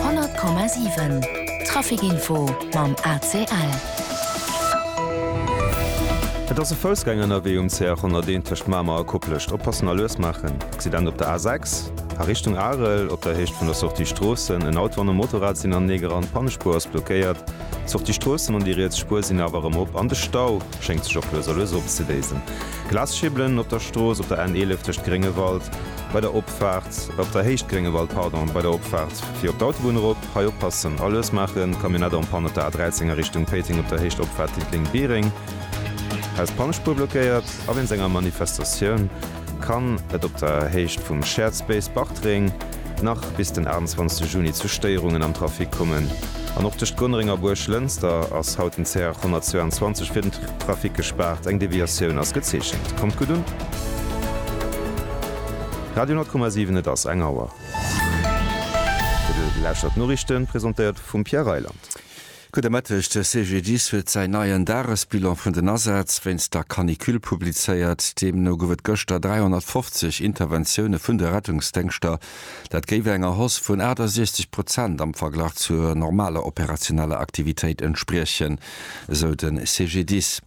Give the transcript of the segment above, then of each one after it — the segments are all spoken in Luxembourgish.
100,7 Traficinfo mam ACL. Et ass e Foussgänger ënnerwee um CR 101 tëscht Mamer a Koplescht. Oppassen a lues maachen. Accident op der A6 a Richtung Arel op der Héicht vun der Sortie Stroossen. En Auto an e Motorrad sinn anenee gerannt, d'Pannespuer ass blockéiert. D'Sortie Stroossen an déi riets Spuer sinn awer erëm op an de Stau schéngt sech och lues a lues opzeléisen. Glasschibelen op der Strooss op der N 11 tëscht Gréngewald bei der. Opfaart, op der Héicht, Gréngewald, pardon, bei der Opfaart fir op d'Autobunn erop, hei oppassen, Erlëss maachen, Camionnette en panne op der A13 a Richtung Péiteng op der Héicht, Opfaart Diddeleng, Biereng, hei ass d'Pannespuer blockéiert. A wéinst enger Manifestatioun kann et op der Héicht vum Shared Space Bartreng nach bis den 28 Juni zu Stéierungen am Trafic kommen an och tëscht Gonnereng a Buerglënster ass haut den CR 122 fir den Trafic gespaart, eng Deviatioun ass gezeechent. Kommt gutt un! Radio 10,7 Et ass eng Auer. Dir lauschtert d'Noriichten, presentéiert vum Pierre Reyland. Gudde Mëtteg, De CGDIS huet säin neien Dagesbilan vun den Asätz wéinst der Canicule publizéiert. Deemno gouf et gëschter 350 Interventioune vun de Rettungsdéngschter. Dat géif enger Hausse vun 68 Prozent am Verglach zur normaler operationeller Aktivitéit entspriechen, esou de CGDIS.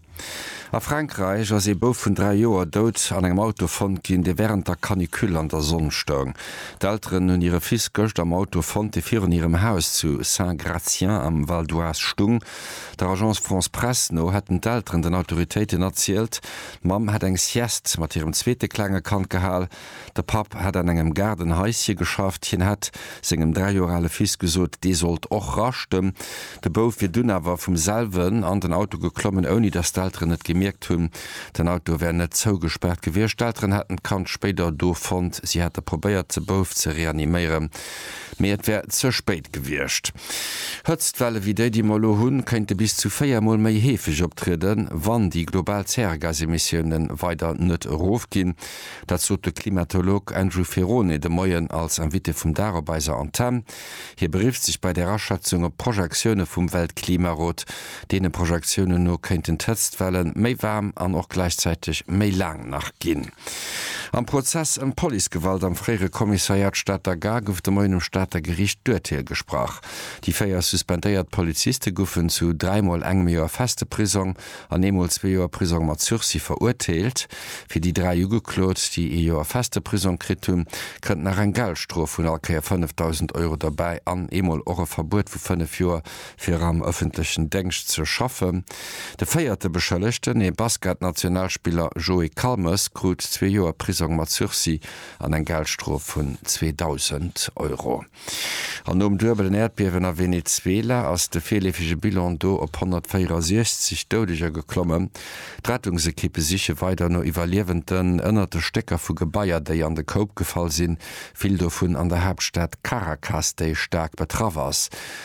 A Frankräich ass ee Bouf vun 3 Joer dout an engem Auto fonnt ginn, dee wärend der Canicule an der Sonn stoung. D'Elteren hunn hire Fils gëscht am Auto fonnt, dee virun hirem Haus zu Saint-Gratien am Val d'Oise stung. Der Agence France-Presse no hätten d'Elteren den Autoritéiten erzielt, d'Mamm hätt eng Sieste mat hirem zweete klenge Kand gehal. De Papp hätt an engem Gaardenhaisje geschafft. Hien hätt sengem dräi Joer ale Fils gesot, dee sollt och raschten. De Bouf wier dunn awer vum selwen an den Auto geklommen, ouni datt d'Elteren et gemierkt hunn. Den Auto wär net zougespaart gewiescht. D'Elteren hätten d'Kand spéider do fonnt. Si hätte probéiert, de Bouf ze reaniméieren, mee et wär ze spéit gewiescht. Hëtztwelle wéi déi, déi mer elo hunn, kéinte bis zu véier Mol méi heefeg optrieden, wann déi global Zäregasemissiounen weider net erofginn. Dat sot de Klimatolog Andrew Ferone de Moien als Invité vum Dag op eiser Antenn. Hie berifft sech bei där Aschätzung op Projektioune vum Weltklimarot. Deene Projektiounen no kéinten d'Hëtztwelle méi waarm an och gläichzäiteg méi laang nach ginn. Am Prozess ëm d'Policegewalt am fréiere Kommissariat Stater Gare gouf de Moien um Stater Geriicht d'Urteel gesprach. Déi véier suspendéiert Poliziste goufen zu dräimol engem Joer feste Prisong an eemol zwee Joer Prisong mat Sursis verurteelt. Fir déi dräi Ugeklot, déi ee Joer feste Prisong kritt hunn, kënnt nach eng Geldstrof vun all Kéier 5.000 Euro derbäi an eemol och e Verbuet vu fënnef Joer, fir am ëffentlechen Déngscht ze schaffen. De véierte Beschëllegten, ee Basket-Nationalspiller Joé Calmes, krut zwee Joer Prisong mat Sursis an eng Geldstrof vun 2.000 Euro. An nom duebelen Äerdbiewen a Venezuela ass de virleefege Bilan do op 164 Doudeger geklommen. D'Rettungsekippe siche weider no Iwwerliewenden ënnert de Stécker vu Gebaier, déi an de Koup gefall sinn, vill dovun an der Haaptstad Caracas, déi staark betraff ass.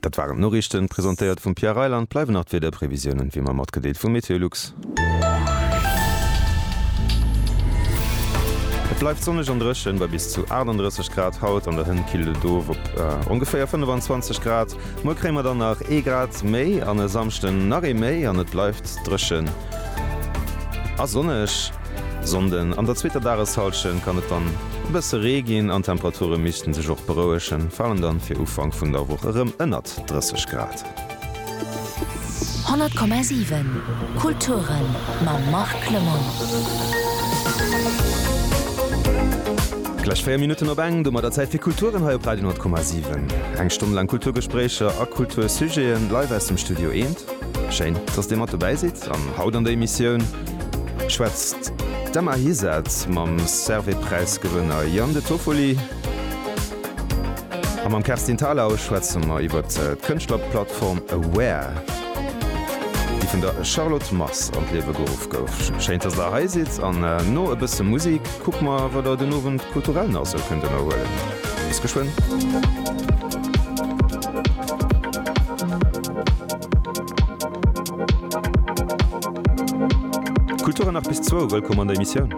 Dat waren d'Noriichten, presentéiert vum Pierre Reyl an et bleiwen nach d'Wiederprevisiounen, wéi mer matgedeelt vu Meteolux. Et bleift sonneg an dréchen bei bis zu 38 Grad haut an der Hënt, killt et of op ongeféier 25 Grad. Muer kréie mer dann nach ee Grad méi an e Samschden nach ee méi an et bleift dréchen. A sonneg Sonnden. An der zweeter Dageshallschent kann et dann e bësse Ree ginn an d'Temperature misste sech och berouegen, falen dann fir Ufank vun der Woch erëm ënnert 30 Grad. 100,7 Kulturen mam Marc Clement. Gläich 4 Minutten op eng, domat der Zäit fir Kulturen hei op Radio 10,7. Eng Stonn laang Kulturgespréicher a Kultursujeten live aus dem Studio Eent. Schéin, dass Dir mat dobäi sidd an haut an der Emissioun schwätzt d'Emma Hisath mam Servais-Präis-Gewënner Yann De Toffoli. A mam Kerstin Thalau schwätze mer iwwer d'Kënschtlerplattform Aware, déi vun der Charlotte Mars an d'Liewe geruff gouf. Schéin, dass Der hei sidd an no e bësse Musik kucke mer, wat Der den Owend kulturell nach esou kënnt ënnerhuelen. Bis geschwënn. Kultur an nach bis zwou, wëllkomm an der Emissioun.